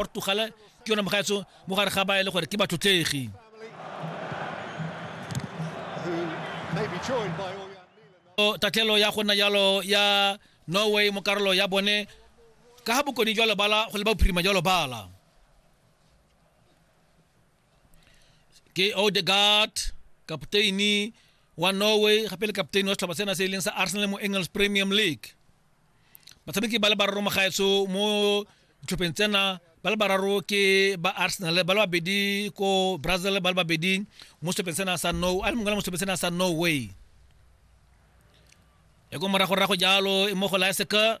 portugal ke yone mogaetso mo gare ga ba e le gore ke batlotlegi tatlhelo ya go nna jalo ya norway mo karolo ya bone ka ga bokone jwa lebala go le ba bophirima jwa lebala ke odegard kapteini wa norway gape le kapteini wa setlhopha sena se e leng sa arsenal mo english premium league batshameki ba le bararo mogaetso mo ditlhopheng tsena ba le bararo ke ba arsenal ba le babedi ko brazil ba le babedi mo setlhopheng sena sa no a le mongwe mo setlhopheng sena sa norway e ko moragorago jalo e mo go laeseka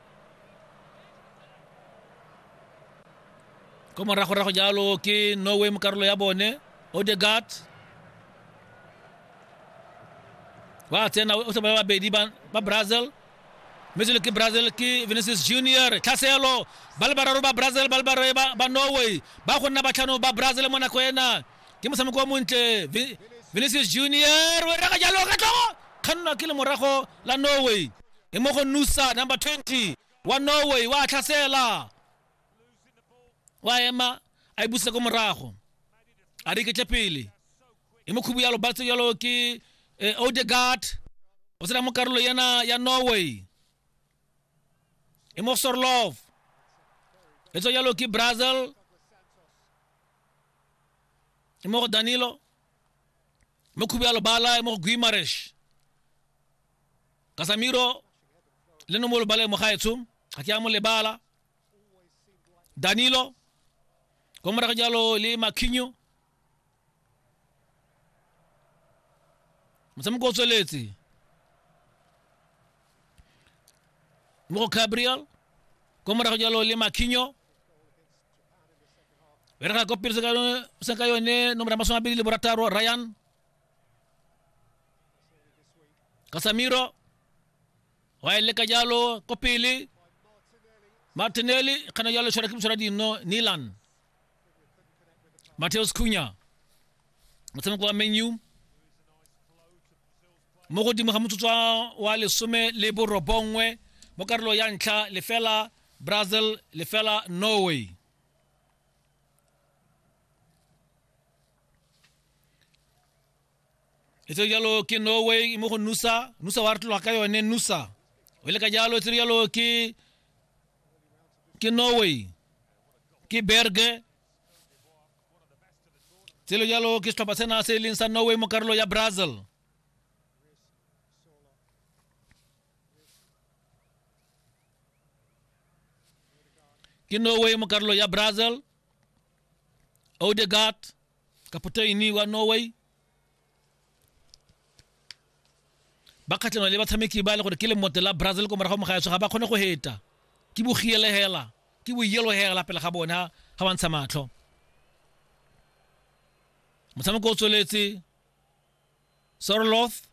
ko moragorago jalo ke norway mo karolo ya bone odegat ba tsena o ba babedi ba brazil mme selo ke brazil ke venesis junior tlhaselo ba le bararo ba brazil ba le bararo ba norway ba go nna batlhano ba brazil mo nako ena ke motshameko wa montle venesis junior o reka jalo ka tlogo kgannwa ke le morago la norway e mo go nusa number 20 wa norway wa tlhasela wa ema a e busa ko morago a re ketle pele e mo khubu yalo batse yalo ke eh, odegard o tsena mo karolo yena ya norway e mo sorlov e tswa yalo ke brazil e mo go danilo e mo khubu yalo bala e mo go guimaresh Casemiro le no mo lebale mo gaetsho ga ke a mo lebala Danilo ko morago jalo le Marquinhos motshameko o tsweletse mo go Gabriel ko morago jalo le Marquinhos berega ko pele se ka yone nomoro ya masome a bedi le borataro Ryan Casemiro wa e leka jalo ko pele Martinelli kana jalo tshwara ke motshwara dino Nilan Mateus Cunha motshameko wa menu mo godimo ga motsotso wa lesome le borobongwe mo karolo ya ntlha lefela brazil lefela norway e tsere jalo ke norway mo go nusa nusa wa re tlologa ka yone nusa o ile ka jalo e tsere jalo ke ke norway ke berge tselo jalo ke setlhopha sena se e leng sa norway mo karolo ya brazil ke norway mo karolo ya brazil Odegaard kapoteni wa Norway ba kgatlhanwa le batshameki ba le gore ke lemote la Brazil ko morago mogaetsho ga ba kgone go heta ke bogielehela ke boielohela pele ga bona ga ba ntsha matlho motshameko o tsweletse Sorloth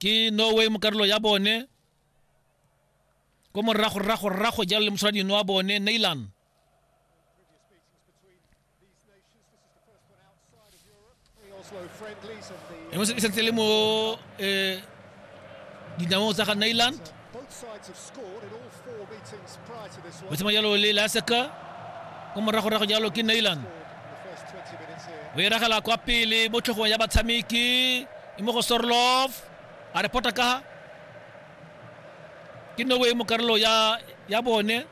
ke norway mo karolo ya bone ko morago rrago rrago jalo le moshwaradino wa bone nailan e sentse le mo um dinamong tsa ga nailand o tsema jalo le laseka ko moragorago jalo ke nailan o iragela kwa pele mo tlhogong ya batshameki e mo go sorlov a re pota ka ke nowe mo karolo ya ya bone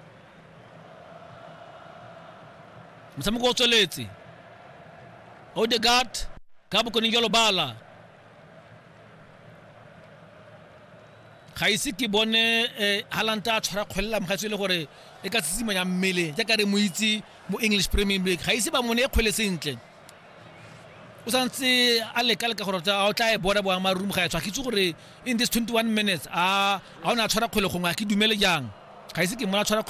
motshameko o tsweletse odegard ka bokoning jalo bala ga ise ke bone um halanta a tshwara kgwelela mogatso e le gore e ka tsitsimanya mmele jaaka re mo itse mo english premium league ga ise ba mone e kgwele sentle o santse a leka leka gore o tla e bona boamarum ga e tshwa ke tse gore in this 21 minutes a ga o ne a tshwara kgwele gongwe a ke dumele jang ga ise ke mona tshwara kgwele